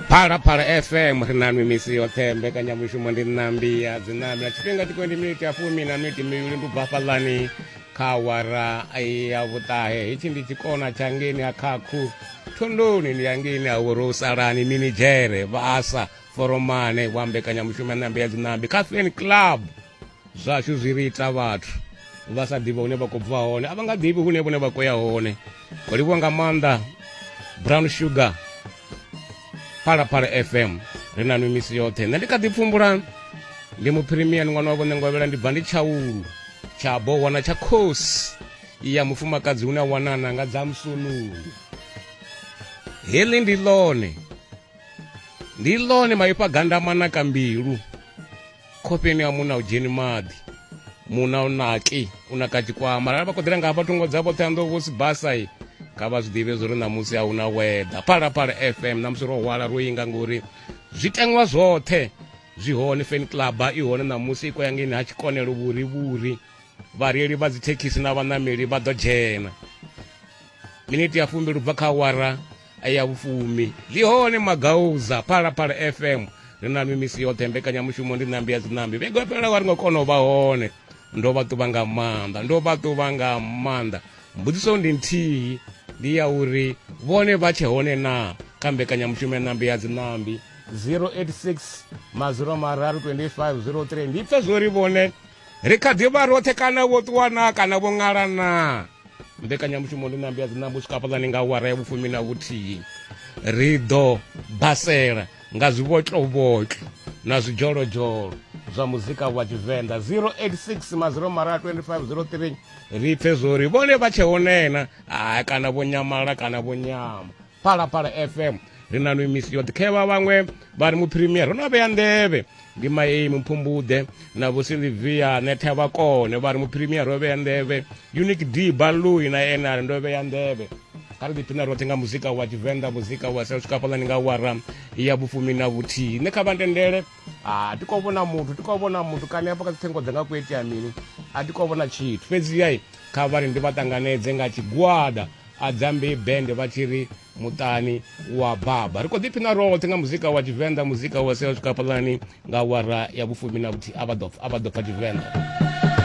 phalaphala fm ri na nwi misi yoṱhe mbekanyamushumo ndi ṋambi ya dzinambi na tshifhinga tiko ndi miniti ya fumi na miniti mivhili ndi ubva fhaḽani kha wara ya vhuṱahe hetshi ndi tshikona tsha ngeni ha khakhu thondoni ndi ya ngeni ha vhorosalani minidzhere vhasa foromane wa mbekanyamushumo ya ṋambi ya dzinambi kha fan club Zwashu zwi ri ita vhathu vha sa ḓivhi hune vha khou bva hone a vha nga ḓivhi hune vhone vha khou ya hone ho livhiwa nga maanḓa brown sugar phalaphala fm ri na nwi misi yoṱhe nṋe ndi kha ḓi pfumbula ndi muphirimian ṅwana wa vhone ngovhela ndi bva ndi tshaulu tsha bowana tsha khosi ya mufumakadzi une a wanana nga dza musunulu heḽi ndi ḽone ndi ḽone maipfa gandamana ka mbilu khofheni ya munna u dzheni maḓi munna u naki u naka tshikwama arali vha khoḓela nga hafha thungo dzavho ṱhanḓo vho sibasai kha vha zwi ḓivhe zwo ri ṋamusi a hu na weather phalaphala fm ṋamusi ro hwala ro inga ngori zwiteṅwa zwoṱhe zwi hone fan club i hone ṋamusi i koyangeni ha tshikonelo vhuri vhuri vhareili vha dzithekhisi na vhaṋameli vha ḓo dzhena miniti ya fumbili ubva kha awara ya vhufumi ḽi hone magauza phalaphala fm ri na mimisi yoṱhe mbekanyamushumo ndi ṋambi ya dziṋambi vhego fhelelaho a ri nga kona u vha hone ndo vha ṱuvha nga maanḓa ndo vha ṱuvha nga maanḓa mbudziso ndi nthihi ndi ya uri vhone vha tshe hone na kha mbekanyamushumo ya ṋambi ya dziṋambi 086 maziro mararu 2503 ndi pfe zwori vhone ri kha ḓi vha roṱhe kana vho ṱuwa naa kana vho ṅala naa mbekanyamushumo ndi nambi ya dzinambo swika hafhaḽani nga wara ya vhufumi na vhuthihi ri ḓo basela nga zwibotlobotlo na zwidzholozdzholo zwa muzika wa tshivenḓa 086 maziro mara 2503 ri pfe zwori vhone vha tshe honena hai kana vho nyamala kana vho nyama phalaphala fm ri na nwi misi yo ḓikhevha vhaṅwe vha ri muphirimier ro no vhea nḓevhe ndi maei mupfumbuḓe na vho silivia netha vha kone vha ri muphirimier ro vhea nḓevhe unique d balui na ene a ri ndo vhea nḓevhe kha ri ḓiphina roṱhe nga muzika wa tshivenḓa muzika wa sa swika fhaḽani nga wara ya vhufumi na vhuthihi nṋe kha vha ntendele ha ah, ti khou vhona muthu ti khou vhona muthu kani hafha kha dzi thengo dzanga ku itea mini a ti khou vhona tshithu fhedzi yai kha vhari ndi vha ṱanganedze nga tshigwada a dzambe bende vha tshi ri muṱani wa baba ri khou ḓiphina roṱhe nga muzika wa tshivenḓa muzika wa sela swika fhaḽani nga wara ya vhufumi na vhuthihi a vha ḓo pfa tshivenḓa